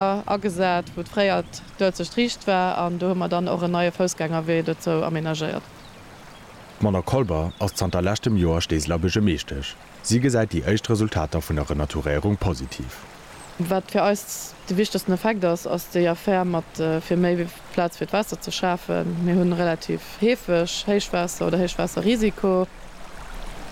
agesat, wou fréier d'Uelzecht riicht war, an do hu mer dann och en neie Foussgängerwee dozou amenagéiert. D'Mona Kolber ass zanter leschtem Joer Steeseler Buergermeeschtesch. Si gesäit déi éischt Resultater vun der Renaturéierung positiv. Wat fir eis de wichtegsten Effekt ass, ass déi Affär mat fir méi wéi Plaz fir d'Waasser ze schafen. Mir hunn relativ heefeg Héichwaasser oder Héichwaasserrisiko.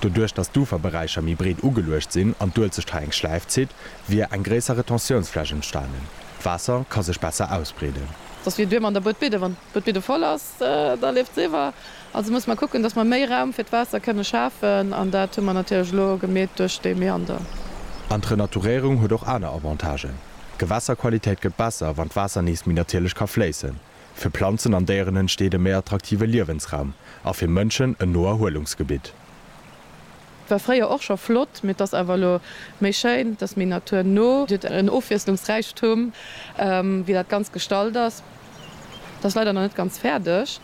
Doduerch dass d'Uferberäicher méi breet ugeluecht sinn an d'Uelzecht hei eng Schläif zitt, wier eng gréisser Retentiounsfläch entstanen. D'Waasser ka sech besser ausbreeden. Dass wier duer mat der Buedbidde. Wann d'Buedbidde voll ass, da leeft se iwwer. Also musse mer kucken, dass mer méi Raum fir d'Waasser kënne schafen, an dat hu mer natierlech elo gemeet duerch dee Meander. An d'Renaturéierung huet och aner Avantagen. D'Gewässerqualitéit gëtt besser, wann d'Waasser nees méi natierlech ka fléissen. Fir Planzen an Déieren entsteet e méi attraktive Liewensraum a fir Mënschen en no Erhuelungsgebitt. War fréier och scho flott, mee et ass awer elo méi schéin, et ass méi naturno. Et huet en Ofwiesslungsräichtum, wéi dat Ganzt gestalt ass. Et ass leider nach net ganz fäerdeg.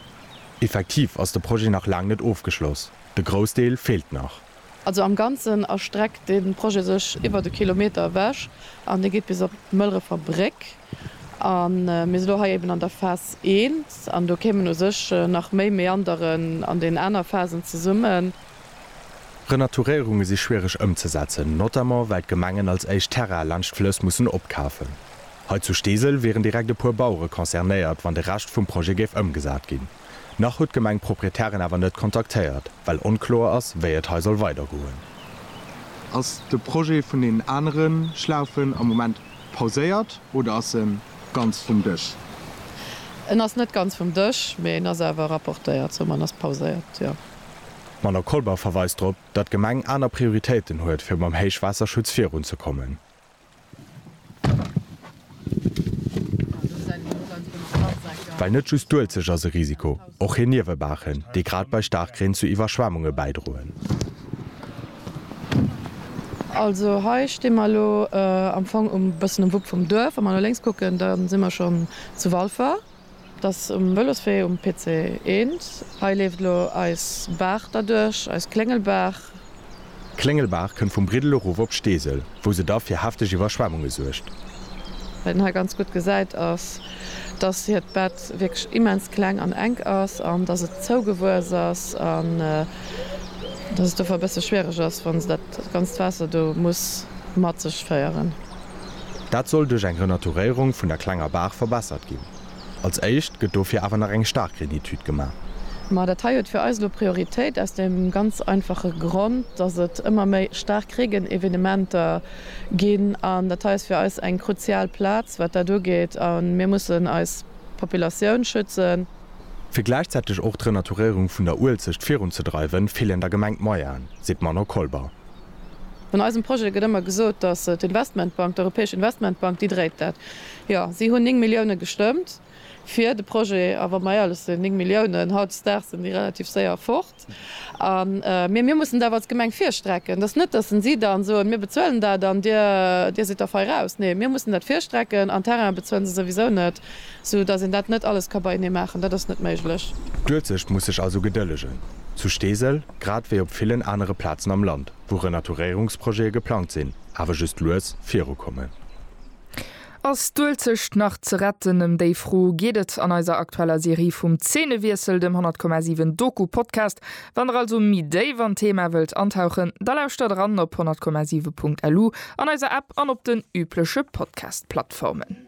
Effektiv ass de Projet nach laang net ofgeschloss, de Groussdeel feelt nach. Also am Ganzen erstreckt dee Projet sech iwwert e Kilometer ewech an dee geet bis op d'Mëlrefer Bréck. A mir si lo hei eben an der Phas I an do kéimen u sech nach méi Meanderen an deenen aner Phasen zesummen. Renaturéierunge si schwiereg ëmzesetzen, notamment well d'Gemengen als éischt Terrae laanscht d'Flëss mussen opkafen. Hei zu Steesel wieren direkt e puer Bauere concernéiert, wann de Rescht vum Projet géif ëmgesat ginn. Nach huet d'Gemeng d'Proprietären awer net kontaktéiert, well onkloer ass, wéi et hei soll weidergoen. Ass de Projet vun deenen anere Schlaufen am Moment pauséiert oder ass e ganz vum Dësch? En ass net ganz vum Dësch, mee en ass awer rapportéiert, sou en ass pauséiert, jo. D'Madamm Colbach verweist drop, datt d'Gemeng aner Prioritéiten huet, fir mam Héichwaasserschutz virunzekommen. Well net just d'Uelzecht ass e Risiko, och hir Niewebaachen, déi grad bei Staarkreen zu Iwwerschwemmunge bäidroen. Also hei sti mer elo am Fong e bëssen um Wupp vum Duerf. Wa mer no lénks kucken, da si mer schonn zu Walfer. Et ass um Vëloswee um PC 1. Hei leeft elo eis Baach derduerch, eis Kléngelbaach. D'Kléngelbaach kënnt vum Briddel erof op Steesel, wou se da fir hefteg Iwwerschwemmunge suergt. Wat een hei ganz gutt gesäit, ass, dass hiert Bett wierklech immens kleng an enk ass an dass et zougewuess ass an dass et dofir e bësse schwiereg ass, wa se dat ganzt Waasser do muss mat sech féieren. Dat soll duerch eng Renaturéierung vun der klenger Baach verbessert ginn. Als éischt gëtt dofir awer nach eng staark Renitude gemaach. Ma dat hei huet fir eis elo Prioritéit aus deem ganz einfache Grond, dass et ëmmer méi staark Reegenevenementer ginn. An dat hei ass fir eis eng kruzial Plaz, wat dat ugeet. A mir mussen eis Populatioun schützen. Fir gläichzäiteg och d'Renaturéierung vun der Uelzecht virunzedreiwen, feelen der Gemeng d'Moyenen, seet d'Manon Kolber. Vun eisem Projet gëtt ëmmer gesot, datt d'Investmentbank, d'Europäesch Investmentbank, déi dréit dat. Jo, si hunn 9 Milliounen gestëmmt fir de Projet. A wa mer éierlech sinn, 9 Milliounen, hautdesdaags sinn déi relativ séier fort. Mee mir mussen et awer als Gemeng virstrecken. Et ass net, datt si da soen, mir bezuelen dat an Dir sidd da fei raus. Nee, mir mussen dat virstrecken an Terrainen bezuelen se souwisou net, soudatt een dat net alles ka beienee maachen. Dat ass net méiglech. D'Uelzecht muss sech also gedëllegen. Zu Steesel Grad wéi op villen anere Plazen am Land, wou Renaturéierungsprojete geplangt sinn, awer just lues virukommen. Ass d'Uelzecht nach ze retten? Ëm déi Fro geet et an eiser aktueller Serie vum Zeenewiessel, dem 100,7 Doku-Podcast. Wann der also méi déif an d'Thema wëllt antauchen, da lauschtert eran op 100,7.lu, an eiser App an op den übleche Podcast-Plattformen.